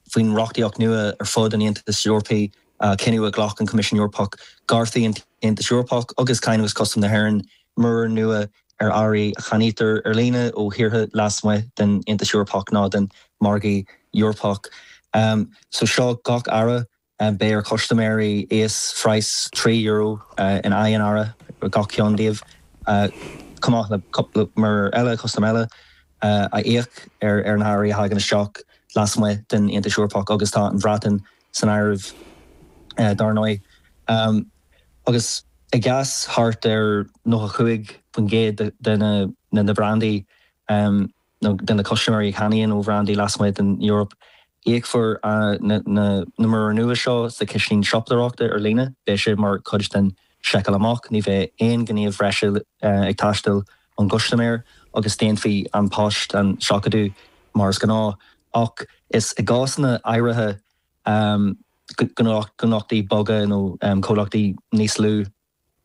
Faoin reachtaíocht nua ar fud an Aontais Eorpaigh, cinneadh a ghlac an Coimisiún Eorpach, gearrfaidh an tAontas Eorpach agus Cáin agus Custaim na hÉireann muirir nua ar earraí a cheannaítear ar líne ó thíortha lasmuigh den Aontas Eorpach nó den Mhargadh Eorpach. So seo gach earra Beidh ar chustaiméirí íosphraghas €3 in aghaidh an earra ar gach ceann díobh, chomh maith le cúpla muirear eile custaim eile a íoc ar na hearraí a thagann isteach lasmuigh den Aontas Eorpach, agus tá an Bhreatain san áireamh dár ndóigh. Agus i gcás thart ar 95% de na brandaí, nó de na custaiméirí a cheannaíonn ó bhrandaí lasmuigh den Eoraip. Íocfar na muirir nua seo sa chiseán siopadóireachta ar líne. Beidh sé mar chuid den seiceáil amach, ní bheidh aon ghníomh breise ag teastáil ón gcustaiméir agus déanfaidh An Post an seachadadh mar is gnáth, ach is i gcásanna áirithe, gnólachtaí beaga nó comhlachtaí níos lú.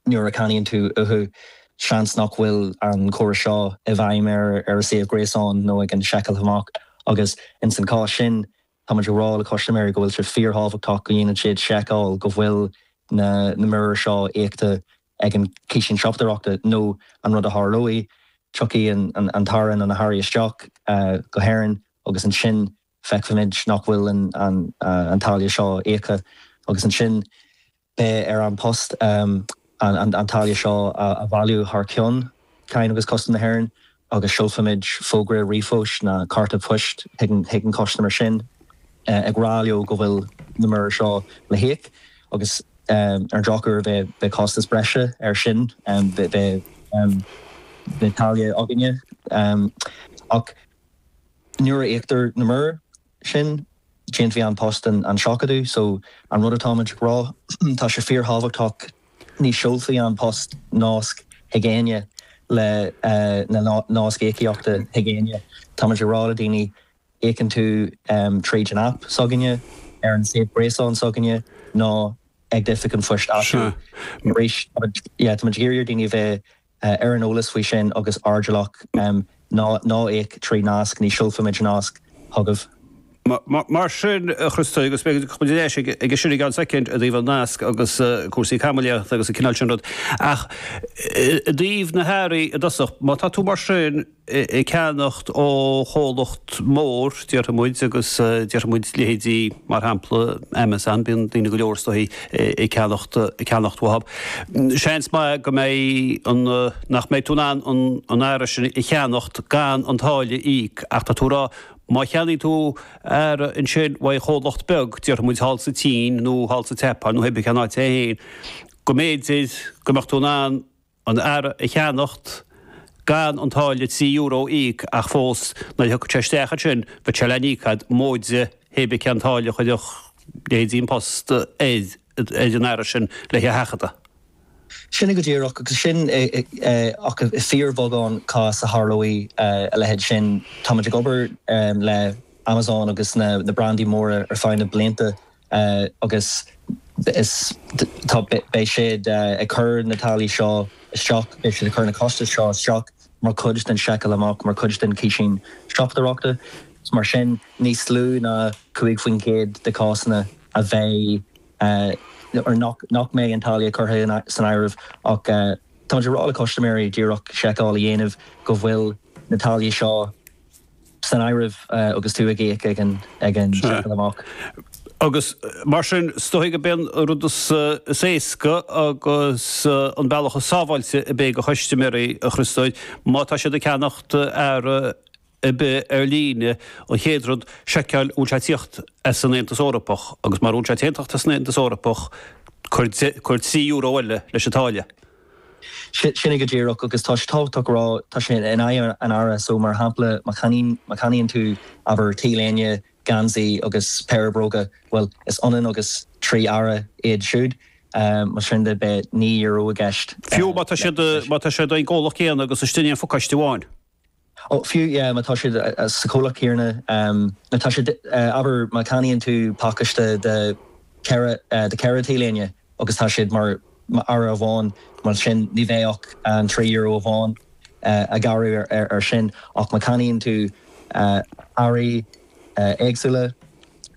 Nuair a cheannaíonn tú uathu, seans nach bhfuil an córas seo i bhfeidhm ar a suíomh gréasáin nó ag an seiceáil amach, agus ins an chás sin, táimid ag rá le custaiméirí go bhfuil sé fíorthábhachtach go ndéanann siad seiceáil go bhfuil na muirir seo íoctha ag an ciseán siopadóireachta, nó an rud a tharlóidh, tiocfaidh an t-earra nó na hearraí isteach go hÉirinn, agus ansin feicfimid nach bhfuil an táille seo íoctha, agus ansin. Beidh ar An Post an táille seo a bhailiú thar ceann Cáin agus Custaim na hÉireann agus seolfaimid fógra ríomhphoist nó cárta poist chuig an gcustaiméir sin ag rá leo go bhfuil na muirir seo le híoc agus ar an drochuair beidh costas breise ar sin. Beidh táille againne ach nuair a íoctar na muirir. sin, déanfaidh An Post an seachadadh so. An rud atáimid ag rá, tá sé fíorthábhachtach, ní seolfaidh An Post nasc chuig éinne le na nasc íocaíochta chuig éinne. Táimid ag rá le daoine, íocann tú tríd an aip s'againne, ar an suíomh gréasáin s'againne, nó ag d'oifig an phoist áitiúil. Arís, táimid ag iarraidh ar dhaoine a bheith Ar an eolas faoi sin agus airdeallach, ná íoc trí nasc, ní seolfaimid nasc chugaibh. Mar sin, a Chriostai, agus beidh muid ar ais aige sin i gceann soicind, i dtaobh an nasc agus cúrsaí caimiléachta agus an cineál sin rud, ach i dtaobh na hearraí i dtosach, má tá tú mar sin, ag ceannacht ó chomhlacht mór, déarfaimid, agus déarfaimid leithéidí, mar shampla, Amazon, bíonn daoine go leor is dóigh ag ceannacht, ag ceannacht uathab, seans maith go mbeidh an, nach mbeidh tú in ann an, an earra sin a cheannacht gan an táille a íoc, ach tá tú ag rá, má cheannaigh tú earra ansin ó chomhlacht beag, déarfaimid thall sa tSín nó thall sa tSeapáin nó hé bith cén áit é féin, go mb'fhéidir go mbeadh tú in ann, an earra a cheannacht gan an táille trí euro a íoc ach fós nuair a thiocfadh sé isteach ansin bheadh sé le n-íoc agat móide hé bith cén táille a chuirfeadh leithéidí An Post ar an earra sin lena sheachadadh. Sin é go díreach, agus sin é ach i bhfíorbheagán cás a tharlóidh a leithéid sin. Táimid ag obair le Amazon agus na brandaí móra ar feadh na blianta agus is tá beidh siad ag cur na táillí seo isteach beidh siad ag cur na costais seo isteach mar chuid den seiceáil amach mar chuid den chiseán siopadóireachta is mar sin níos lú ná 5 faoin gcéad de chásanna a bheidh nuair nach nach mbeidh an táille curtha san áireamh ach táimid ag rá le custaiméirí díreach seiceáil a dhéanamh go bhfuil na táillí seo san áireamh agus tú ag íoc ag an seiceáil amach. Agus mar sin, is dóigh gurb é an rud is éasca agus an bealach is sábháilte ar bith do chustaiméirí a Chriostóir má tá siad ag ceannacht earra ar bith ar líne. An chéad rud, seiceáil bhfuil sé ag tíocht as an Aontas Eorpach, agus mura bhfuil sé ag tíocht as an Aontas Eorpach, cuir €3 eile leis an táille. Sin é go díreach, agus tá sé tábhachtach a rá, tá sé in aghaidh an earra, so mar shampla má cheannaíonn tú, abair, t-léine, geansaí agus péire bróga, bhuel, is ionann agus trí earra iad siúd, más sin de beidh naoi euro i gceist. Fiú má tá siad ag an gcomhlacht céanna agus istigh in aon phacáiste amháin. Ó, fiú, yeah, má tá siad sa chomhlacht céanna, má tá siad, abair, má cheannaíonn tú pacáiste de cheithre, de cheithre T-léine agus tá siad mar, mar earra amháin, bhuel, sin, ní bheidh ach an trí euro amháin á ghearradh air sin, ach má cheannaíonn tú earraí éagsúla,